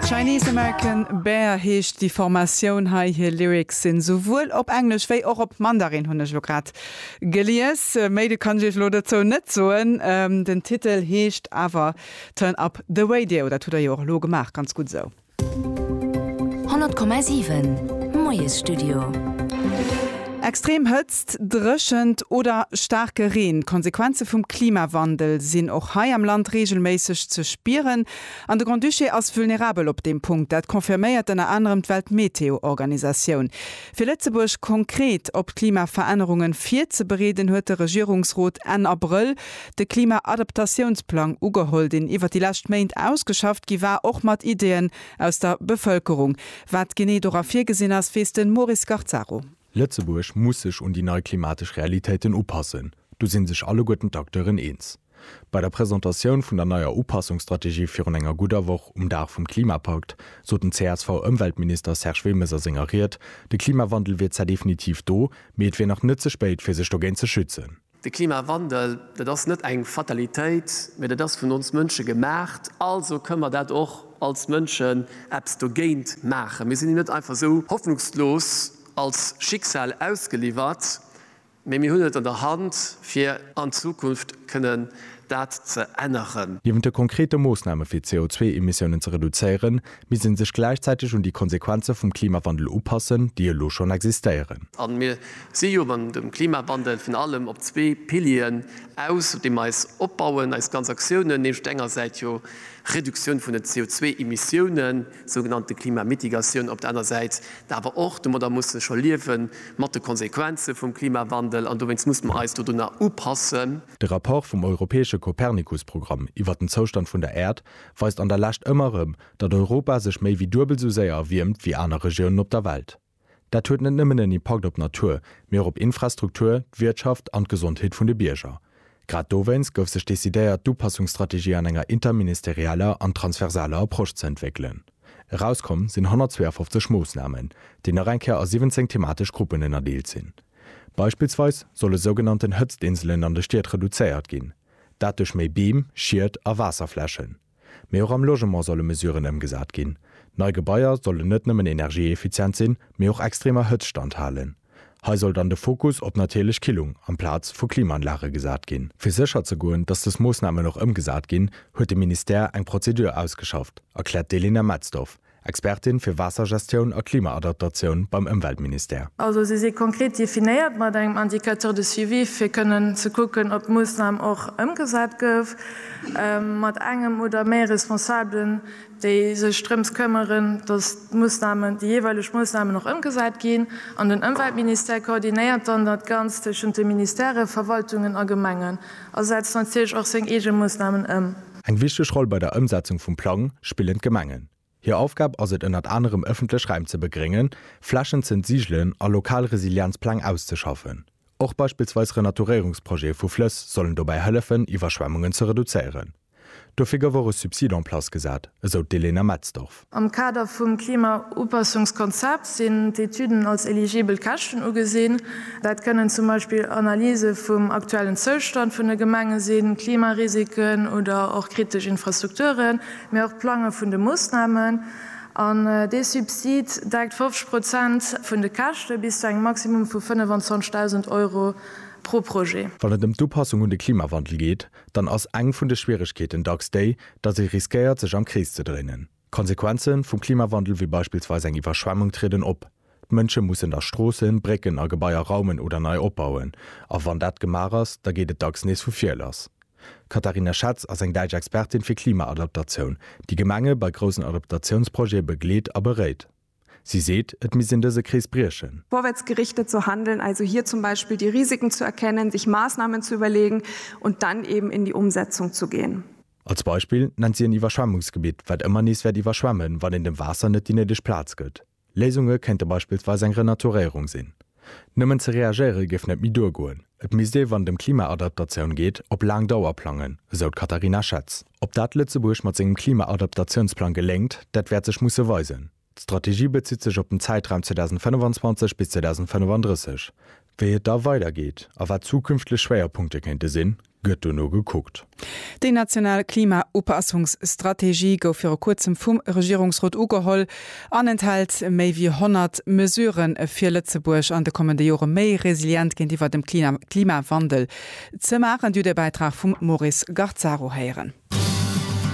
Chinese American Bear heescht déi Formatioun hei. Hir Lyrics sinn souwuel op Englesch wéi och op Mandarin, hunn ech elo grad gelies. Méi de kann ech iech elo dozou net soen. Den Titel heescht awer Turn Up The Radio. Dat hutt der jo och elo gemaach. Ganz gutt esou. 100,7 Moiesstudio. Extrem Hëtzt, Dréchent oder staarke Reen, d'Konsequenze vum Klimawandel sinn och hei am Land reegelméisseg ze spieren. An de Grand-Duché ass vulnerabel op deem Punkt. Dat confirméiert ënner anerem d'Weltmeteo-Organisatioun. Fir Lëtzebuerg konkret op d'Klimaverännerunge virzebereeden, huet de Regierungsrot Enn Abrëll de Klima-Adaptatiounsplang ugeholl, deen iwwer déi lescht Méint ausgeschafft gi war, och mat Ideeën aus der Bevëlkerung. Wat genee dora virgesinn ass, weess de Maurice Garzaro. Lëtzebuerg muss sech un déi nei klimatesch Realitéiten upassen, do si sech alleguerten d'Acteuren eens. Bei der Presentatioun vun der neier Upassungsstrategie virun enger gudder Woch, um Dag vum Klimapakt, sot den CSV-Ëmweltminister Serge Wilmes a senger Ried, de Klimawandel wier zwar definitiv do, mee et wier nach net ze spéit, fir sech dogéint ze schützen. De Klimawandel, dat ass net eng Fatalitéit, mä dat ass vun ons Mënsche gemaacht, also kënne mer dat och als Mënschen eppes dogéint maachen. Mir sinn net einfach esou hoffnungslos als Schicksal ausgeliwwert, mä mir hunn et an der Hand fir an Zukunft kënnen dat ze änneren. Niewent de konkrete Moossname fir d'CO2-Emissiounen ze reduzéieren, misst ee sech gläichzäiteg un déi Konsequenze vum Klimawandel upassen, déi elo schonn existéieren. A mir si jo beim dem Klimawandel virun allem op zwee Pilieren aus, op deem mer eis opbauen, eis ganz Aktiounen, nämlech op der enger Säit jo Reduktioun vun den CO2-Emissiounen, sougenannte Klimamitigatioun, op der aner Säit da awer och, domadder muss ee scho liewen, mat de Konsequenze vum Klimawandel. An dowéinst muss mer eis dodunner upassen. De Rapport vum europäesche Copernicus-Programm iwwer den Zoustand vun der Äerd weist an der Lescht ëmmer erëm, datt Europa sech méi wéi duebel sou séier erwiermt wéi aner Regiounen op der Welt. Dat huet net nëmmen en Impakt op d'Natur, mee och op Infrastruktur, d'Wirtschaft an d'Gesondheet vun de Bierger. Grad dowéinst gouf sech decidéiert, d'Upassungsstrategie an enger interministerialer an transversaler Approche ze entwéckelen. Erauskomm sinn 152 Moossnamen, déi nach eng Kéier a 17 thematesch Gruppen ënnerdeelt sinn. Beispillsweis solle sougenannten Hëtztinselen an de Stied reduzéiert ginn, dat duerch méi Beem, Schied a Waasserflächen. Mee och am Logement solle Mesuren ëmgesat ginn. Nei Gebaier sollen net nëmmen energieeffizient sinn, mee och extremer Hëtzt standhalen. Hei soll dann de Fokus op natierlech Killung amplaz vu Klimaanlage gesat ginn. Fir sécher ze goen, datt dës Moossnamen och ëmgesat ginn, huet de Ministère eng Prozedur ausgeschafft, erkläert d'Elena Metzdorf, Expertin fir Waassergestioun a Klimaadaptatioun beim Ëmweltministère. Also se si konkret definéiert mat engem Indicateur de suivi fir kënnen ze kucken, ob d'Moossnam och ëmgesat gouf, mat engem oder méi Responsabelen, déi sech drëms këmmeren, datt d'Moossnamen, déi jeeweileg Moossnamen och ëmgesat ginn. An den Ëmweltministère koordinéiert dann dat Ganzt tëschent de Ministèren, Verwaltungen a Gemengen a setzt natierlech och seng eege Moossnamen ëm. Eng wichteg Roll bei der Ëmsetzung vum Plang spillen d'Gemengen. Hir Aufgab ass et ënnert anerem ëffentlech Räim ze begréngen, Flächen z'entsigelen a lokal Resilienzpläng auszeschaffen. Och beispillsweis Renaturéierungsprojete vu Flëss sollen dobäi hëllefen Iwwerschwemmungen ze reduzéieren. Dofir gouf och e Subsid en place gesat, esou d'Elena Metzdorf. Am Kader vum Klimaupassungskonzept sinn d'Etüden als eligibel Käschten ugesinn. Dat kënnen zum Beispill Analyse vum aktuellen Zoustand vun de Gemenge sinn, Klimarisiken oder och kritesch Infrastrukturen, mee och d'Plange vun de Moossnamen. An dee Subsid deckt 50 Prozent vun de Käschte bis zu engem Maximum vu 25.000 Euro pro Projet. Wann et ëm d'Upassung un de Klimawandel geet, dann ass eng vun de Schwieregkeeten dacks déi, datt ee riskéiert, sech am Krees ze dréinen. D'Konsequenze vum Klimawandel wéi beispillsweis eng Iwwerschwemmung trieden op. D'Mënsche mussen da Stroossen, Brécken a Gebaier raumen oder nei opbauen. A wann dat gemaach ass, da geet et dacks nees vu vir lass. D'Katharina Schetz ass eng däitsch Expertin fir Klimaadaptatioun, déi Gemenge bei groussen Adaptatiounsprojete begleet a beréit. Si seet, et misst een dëse Krees briechen. Vorwärtsgerichtet zu handeln, also hier zum Beispiel die Risiken zu erkennen, sich Maßnahmen zu überlegen und dann eben in die Umsetzung zu gehen. Als Beispill nennt si en Iwwerschwemmungsgebitt, wat ëmmer nees wäert iwwerschwemmen, wann een dem Waasser net déi néideg Plaz gëtt. Léisunge kéinte beispillsweis eng Renaturéierung sinn. Nëmmen ze reagéiere géif net méi duergoen. Et misst ee wann et ëm Klimaadaptatioun geet, op laang Dauer plangen, esou d'Katharina Schetz. Ob dat Lëtzebuerg mat sengem Klimaadaptatiounsplang geléngt, dat wäert sech musse weisen. D'Strategie bezitt sech op den Zäitraum 2025 bis 2035. Wéi et da weidergeet a wat zukünftlech Schwéierpunkte kéinte sinn, gëtt duerno gekuckt. Déi national Klima-Upassungsstrategie gouf viru kuerzem vum Regierungsrot ugeholl an enthält méi wéi 100 Mesurë fir Lëtzebuerg an de kommende Jore méi resilient géintiwwer dem Klimawandel ze maachen. D'Judebäitrag vum Maurice Garzaro héieren.